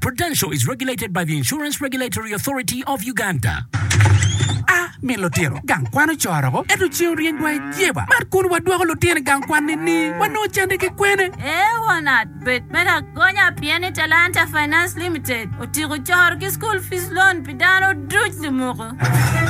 Prudential is regulated by the Insurance Regulatory Authority of Uganda. A. Min lutino gang kwan ocoro woko ento ceng oryeny wa i jeba man kun wadwoko lutino i gang kwan nini? Wanongo cente ki kwene? A. Wanat bed me lagonya pien ni Talanta Finance Limited otyeko coro ki school fees loan pi dano duc lumoko.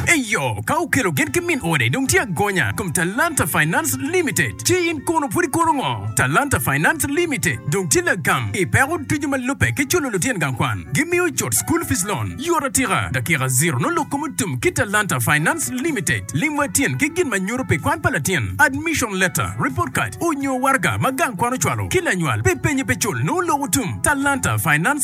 Eyo, ka okelo gin ki min ode dong tye agonya kom Talanta Finance Limited. Ci in kono pud ikono ngo? Talanta Finance Limited dong tye lagam i peko ducu ma lubbe ki culo lutyen gang kwan. Gi miyo cut school fees loan yot atika. Dakika ziro nongo lok kom otum ki Talanta Finance Limited. Lim wa tyen ki gin ma nyuto pi kwan pa latin, admission letter, report card, onyo waraga ma gang kwan ocwalo ki lanywal pi penye pe cul nongo lok otum. Talanta Finance.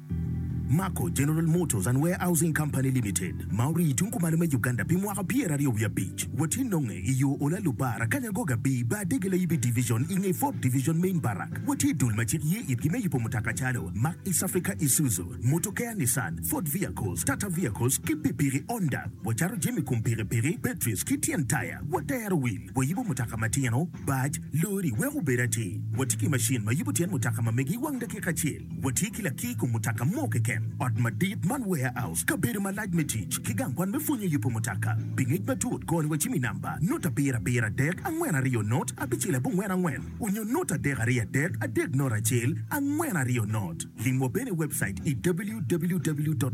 Mako General Motors and Warehousing Company Limited ma orii tung kumalo me Uganda pi mwaka pyeraryo wiye abic watye nonge i yo Ola Lubar Akanya Goga Bii Bar Dege Layibi Division i nge Ford Division Main Barrack watye dul ma cik ye itgi me yubo mutoka calo Mack East Africa Isuzu Motokea Nissan Ford Vehicles Tata Vehicles ki pikpiki Honda wacato jami kom pikipiki batteries ki tyen taya watero wil wayubo mutoka matino bac Lori weko obed atir watye ki macin ma yubo tyen mutoka ma megi wang dakika acel Watye ki lakir kom mutoka mo keken, ot madit man, warehouse, kabedo malac me tic, ki gang kwan me pwonyo yubo mutoka. Pi ngec matut, kor ni wa cim i namba, nut abiro abiro adek angwen aryo nut abicel abongwen angwen, onyo nut adek aryo adek adek nut acel angwen aryo nut. Lim wa bene i webcait i www.marco.ug.